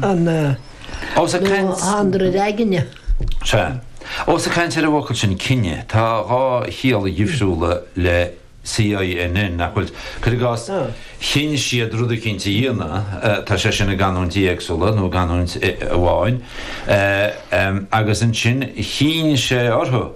an dream aigne. Sea. Ós ag caint ar an bhfocal sin 'cinneadh', tá dhá chiall dhifriúla le CINN, nach bhfuil? Cuir i gcás, chinn siad rud eicínt a dhéanamh, tá sé sin i gcanúintí éagsúla, nó i gcanúint amháin, agus ansin chinn sé orthu.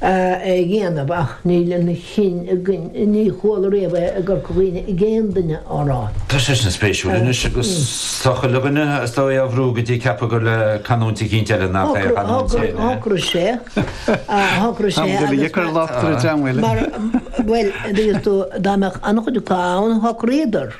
é a dhéanamh ach níl an chinn againn. Ní chuala riamh é i gCorca Dhuibhne ag aon duine á rá. Tá seisean spéisiúil anois agus tá chuile dhuine as dóigh á bhrú go dtí ag ceapadh gur le canúint eicínt eile nach é a chanúint féin é. Shocraigh sé, shocraigh sé agus. Táimid uilig ag cur locht ar an dream eile. Mar, bhuel, dá mbeadh an-chuideachta ann shocraíodar.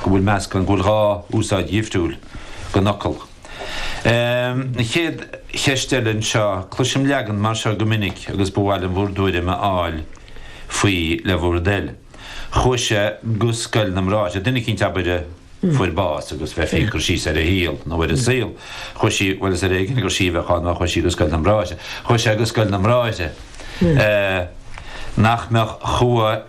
go bhfuil meascán, go bhfuil dhá úsáid dhifriúil den fhocal. An chéad cheist eile anseo, cloisim leagan mar seo go minic agus ba mhaith liom bhur dtuairim a fháil faoi le bhur dtoil. Chuaigh sé go scoil na mBráithre, duine eicínt abair a fuair bás agus bheifí ag cur síos ar a shaol nó ar a saol, chuaigh sí, bhuel is ar éigean gur sí a bheadh ann má chuaigh sí go scoil na mBráithre, chuaigh sé go scoil na mBráithre. Nach mbeadh, chuaigh.